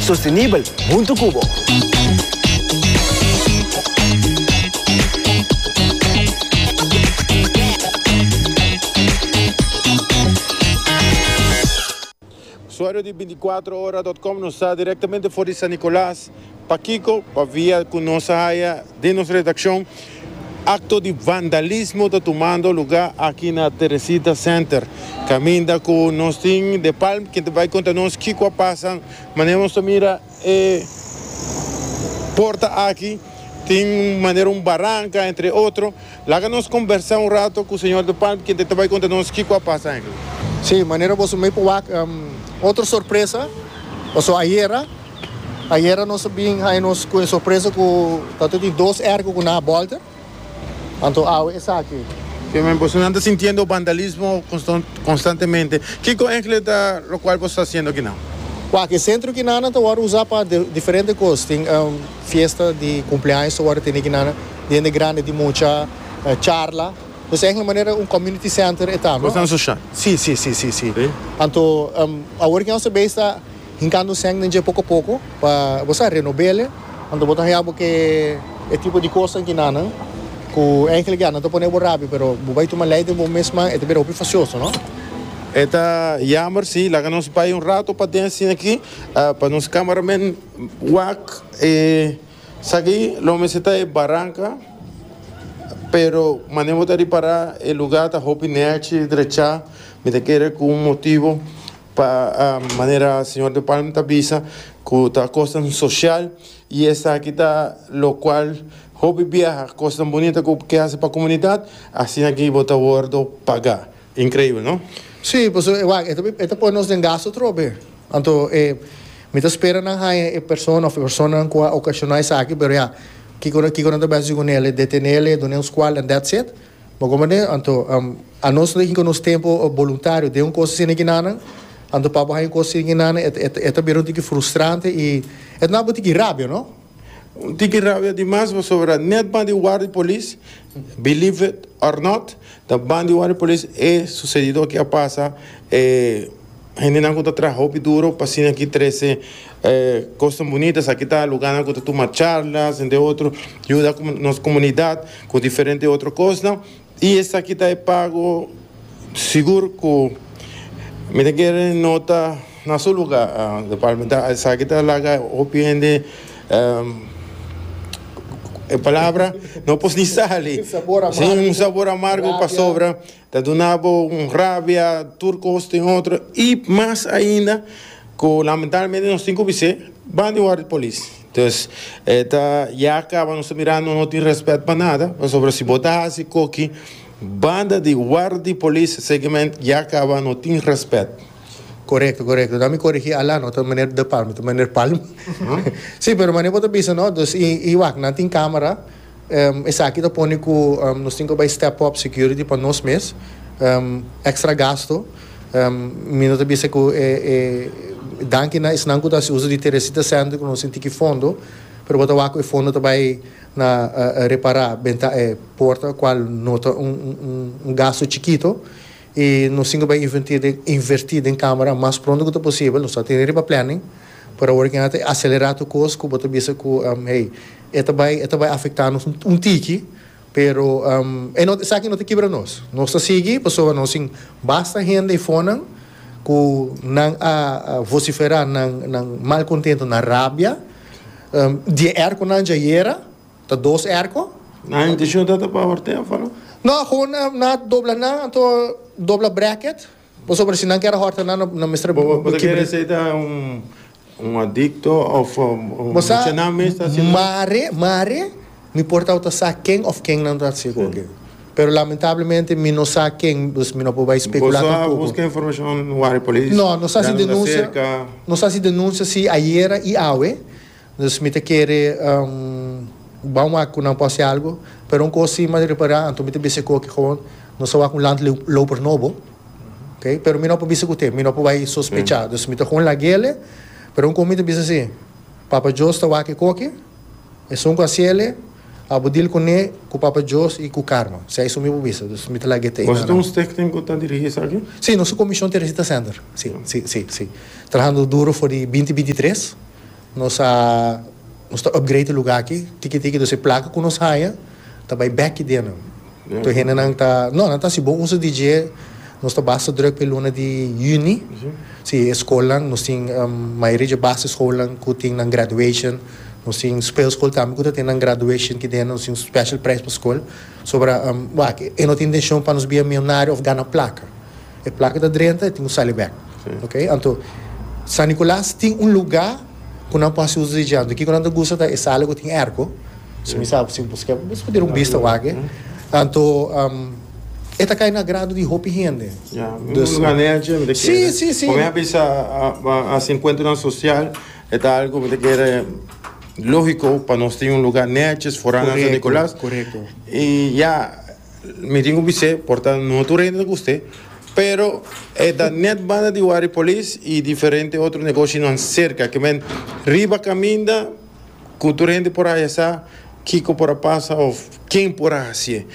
Sostenibel huntu cu bo. Usuario di binticuatrohoradotcom nos sa directamente for di San Nicolas, pakico? Pa via cu nos a haya den nos redaccion. Acto di vandalismo ta tumando luga aki na Teresita Center, caminda cu nos tin de Palm quien ta bay conta nos kico a pasa. Manera nos ta mira e porta aki tin un manera un baranca entre otro. Laga nos conbersa un rato cu señor de Palm quien ta ta bay conta nos kico a pasa aki. Sí, manera boso mey por wak otro sorpresa, paso ayera. Ayera nos a bin haña nos cu e sorpresa cu ta tin dos erco cu na a bolta. Anto awe esaki. Oke men, boso nan ta sintiendo vandalismo constantemente. Kico engle ta locual boso ta haciendo akinan? Waak, e centro akinan nan ta wordo usa pa diferente cos. Tin fiesta di cumpleaños ta wordo tene akinan, diende grande di mucha, charla. Pues engle manera un community center e ta, no? Cosnan social. Si, si, si, si, si. Si. Anto awor ki nos a bay esta. Hincando sèn den dje poko poko pa bo sa renobele. Anto bo ta haña bo ke e tipo di kosnan kinanan ku enkele ya nan ta pone bo rabia pero bo bai tuma lei den bo mes man e ta bira hopi fasioso no. E ta yamber si. Laga nos bai un rato paden asina aki pa nos cameraman wak e sa aki lo mester ta e baranca pero manera bo ta ripara e lugar ta hopi nèchi drechá mi ta kere ku un motibo. Pa manera señor De Palm ta bisa cu ta cosnan social y esaki ta locual hopi biaha cosnan bunita cu ke haci pa comunidad asina ki bo ta wordo paga. Increibel no? Sí, pasobra e wak e ta pone nos den gasto atrobe. Anto e mi ta spera nan haña e persona of e personanan cu a ocasiona esaki pero ya, kico kico nan ta bisa haci cu nel? E detenel e dun'e un scual and that's it? Bo komo den, anto, anos lo hinka nos tempo boluntario den un kos asina di kinanan, anto pa bo haña un kos asina di kinanan e ta bira un tiki frustrante i e ta nau bo un tiki rabia, no? Un tiki rabia dimas pasobra net ban di war di polis, believe it or not, ta ban di war di polis e susedido aki a pasa, e. Hendenan ku ta traha hopi duro pa asina ki trese kosnan bonitas. Aki ta lugánan ku ta tuma charlas, entre otro, yuda nos komunidat ku diferente otro kosnan. I esaki ta e pago sigur ku mi ta kere nota na su lugá, don Palmita. Esaki ta laga hopi hende e palabra no por ni sali, si, un sabor amargo pasobra. Ta duna bo un rabia tur cos tin otro y mas ainda cu lamentablemente nos tin cu bis'e ban di worde polis. Entonces e ta ya caba nos ta mira no no tin respet pa nada pasobra si bo ta haci coki banda di worde polis seguement ya caba no tin respet. Corecto corecto ta mi corigi Alan no ta meneer De Palma ta meneer Palma si pero manera bo ta bisa no dos y y wak nan tin camera. Esaki ta pone ku nos tin ku bai step up security pa nos mes. Extra gasto. Mi no ta bisa ku e danki na esnan ku ta hasi uso di Teresita Center ku nos tin tiki fondo pero bo ta wak ku e fondo ta bai na repara benta e porta kual no ta un gasto chikito. I nos tin ke bai inverti den inverti den camera mas pronto ku ta posibel. Nos ta tene riba planning. Por awor ken a ta acelera tur kos ku bo ta bisa ku hey e ta bai e ta bai afecta nos un tiki pero e no esaki no ta kibra nos. Nos ta sigui pasobra nos tin basta hende i fonan ku nan a vocifera nan malcontento nan rabia di e erco nan dja yera Ta dos erko? Nan inteshon ta ta pa Ortega faló? No, gewoon na dobla nan anto dobla bracket pasobra si nan kere horta nan no mester Bo ta kibri. kere esei ta un adikto of Bo sa mucha nan mes ta hasi nan? mare mare mi por tawata sa ken of ken nan ta hasi goge pero lamentablemente mi no sa ken dus mi no por bai Bo spekulá sa tampoco. buska informashon wari polis No, nos hasi ya nan ta denuncia, serka? nos hasi denuncia si ayera y awe. Dus mi ta kere bou wak ku nan por hasi algu, pero un kos si m'a repará anto mi ta bisa koke gewoon nos ta wak un land loper nobo, ok, pero mi no por bisa kute, mi no por bai sospechá, dus mi ta gewoon lag'ele, pero un kos mi ta bisa si Papa Djos ta wak e koke, esun ku hasiele, a bo dil kuné, ku Papa Djos i ku karma, si a esun mi por bisa, dus mi ta lag'e t'ei. Nos ta un stichting ku ta dirigí esaki? Si, nos ta Komishon Teresita Sender, si, si, si, si, trahando duro for di binti binti tres. Nos a nos ta upgrade e luga aki tiki tiki dus e plaka ku nos haya ta bai bek ki dena. Tur hendenan ta no nan ta si bo usa di dje nos ta basta druk pa e luna di yüni si e skolnan nos tin mayoria dje base skolnan ku tin nan graduation nos tin speelskol tambe ku ta ten nan graduation ki dena nos tin special prijs pa skol sobra wak e no ta intenshon pa nos bia milnario of gana plaka. E plak ku ta drenta e tin ku sali bèk. Oke. Anto San Nikolas tin un lugá ku nan por hasi uso di dje. Anto kiko nan ta gusta ta e sala ku tin èrko. Si mi sa si boso ke boso por duna un bista wak. Anto e ta kai na agrado di hopi hende. Ya. Un lugá nèchi mi ta kere. Si, si, si. Ku mi a bisa a hasi enkuentronan sosial e ta algu ku mi ta kere lógiko pa nos tin un lugá nèchi forá nan San Nikolas. Korekto, korekto. I ya. Mi tin ku bis'é por ta un otro renta ta kust'é, pero e ta nèt banda di Wari Polis i diferente otro negoshinan serka ke men riba kaminda ku tur hende por haya sa kiko por a pasa òf ken por a hasié.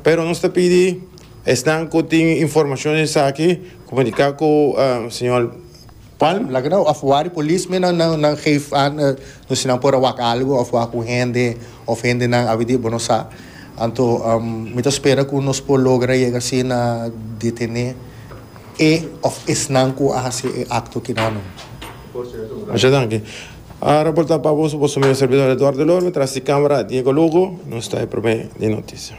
Pero nos ta pidi esnan ku tin informashon esaki komuniká ku señor. Palm, laga nan of wak di polis mi nan nan geef aan no si nan por a wak algo of wak un hende of hendenan abi di bo no sa anto mi ta spera ku nos por logra yega si na detene e of esnan ku a hasi e akto kinanan. Masha danki. A raporta pa boso boso mi un servidor Eduardo Lor mi tras di camera Diego Lugo nos ta e prome di noticia.